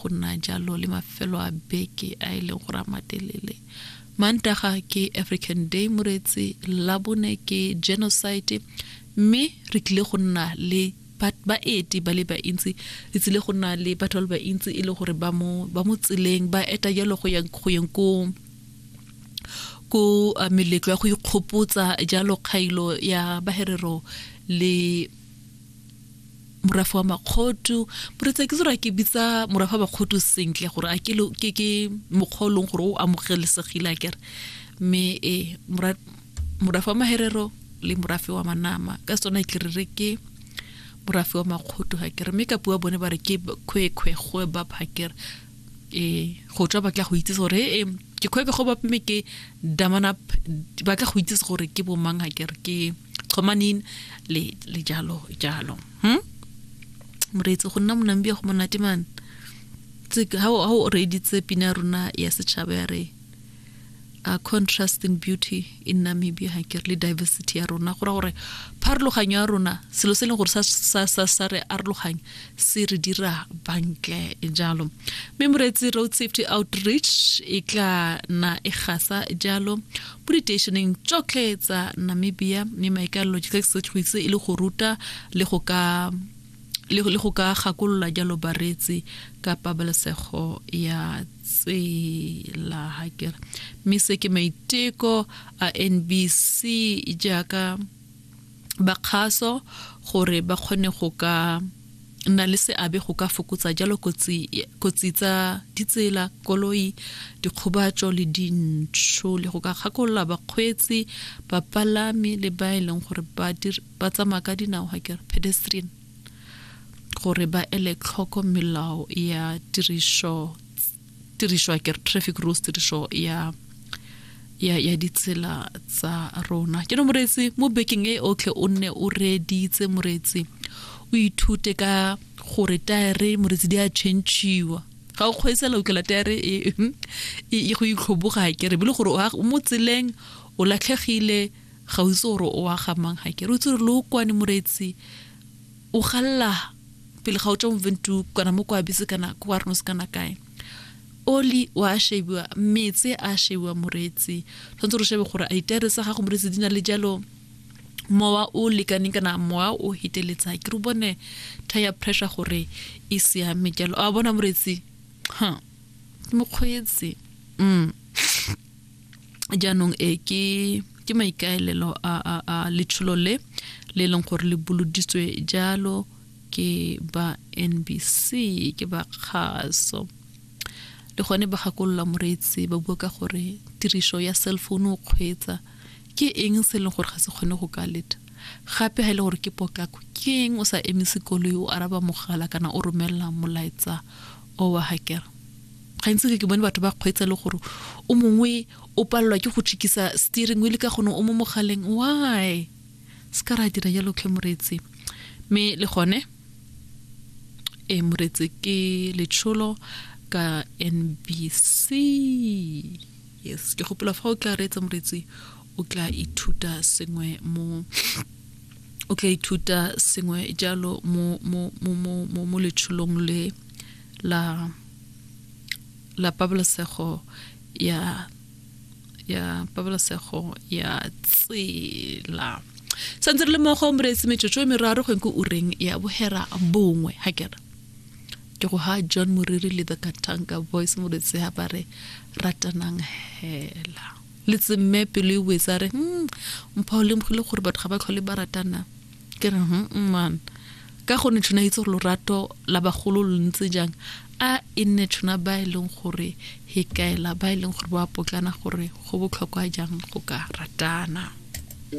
go nna jalo le mafelo a beke a e leng gore a matelele mantaga ke african day moreetsi labone ke genocide mme re tlile go nna le baeti ba le bantsi re tsile go nna le batho ba le bantsi e le gore ba mo tseleng ba eta jalo go yeng ko ko uh, meletlo ya go ikgopotsa jalo kgailo ya baherero le morafe wa makgotu moretsa ke tsere ke bitsa morafe wa makgotu sentle gore a ke ke ke mokgwa leng gore o amogelesegile a kere mme e morafe wa maherero le morafe wa manama ka sone ke re ke morafe wa makgotu ga kere mme kapi wa bone ba re ke khwekhwe go ba phakere e go tswa batla go itse gore e ke khwebe go ba mme ke damana batla go itse gore ke bomang ga kere ke kgomaneng le le jalo jalo hm moreetsi go nna monambia go monate man ha o reeditse pina rona ya setšhaba ya re a contrast in beauty in namibia ga ke le diversity ya rona go ra gore pharologanyo ya rona selo se e leng gore sa re arologanya se re dira bantle jalo mme moreetsi road safety outreach e tla na e gasa jalo mo diteisheneng tsotlhe tsa namibia mme maikalelo ke se go itse e le go ruta le go ka le go ka gakolola jalo bareetsi ka pabalesego ya tsela ha kere mme se ke maiteko a nbc jaaka ba kgaso gore ba kgone go ka nna le seabe go ka fokotsa jalo kotsi tsa ditsela koloi dikgobatso le dintsho le go ka gakolola bakgweetsi bapalami le ba e leng gore ba tsamaya ka dinao ga kere pedestrian gore ba ele tlhoko melao ya tiriso tiriso ya kere traffic rules tiriso ya ya ya ditsela tsa rona ke no moreetsi mo bekeng e otlhe o nne o reeditse moreetsi o ithute ka gore taere moreetsi di a changiwa ga o kgweetsela ukela taere e, e, e go itlhoboga ke re bile gore o mo tseleng o latlhegile ga o itse gore o wa gamang ga ke re o itse gore lo kwane moreetsi o galela pele ga o tswa mo ventu kana mo kwa bise kana kwa rno se kana kae oli wa shebiwa metse a shebiwa moretsi tshwanetse re shebe gore a ditere tsa gago moretsi di na le jalo mowa o lekaneng kana mowa o heteletsa ke re bone tire pressure gore e siame jalo a bona moretsi ha mokgweetsi mm jaanong e ke ke maikaelelo a, a, a letsholo le le leng gore le boloditswe jalo ke ba nbc ke ba kgaso le gone ba gakolola moreetsi ba bua ka gore tiriso ya cell phone o kgweetsa ke eng se e leng gore ga se kgone go ka leta gape ga e le gore ke potlako ke eng o sa emise koloi o araba mogala kana o romelela molaetsa o wa hakere gantsi ke ke bone batho ba kgweetsa le gore o mongwe o palelwa ke go tšhikisa steering wheel ka gone o mo mogaleng why se ka ra dira jalo tlhe moreetsi mme le gone e moreetsi ke letsholo ka nbc yes ke gopola fa o tla reetsa moreetsi o tla ithuta sengwe mo o tla ithuta sengwe jalo mo mo mo mo mo letsholong le la la pabalesego ya ya pabalesego ya tsela santse re le mogo moreetsi metsotso e meraro go nko ureng ya bohera bongwe ga kera ke go ha john moriri le the katanka voice moreetsi ga ba re ratanang hela le tsemme pelo e wetsa re hmm, mpha o lemogile gore batho ga ba tlhole ba ratana ke re man ka gonne tshwana itse gore lorato la bagolo lo ntse jang a e nne tshwana ba e leng gore he kaela ba e leng gore ba potlana gore go botlhokwa jang go ka ratana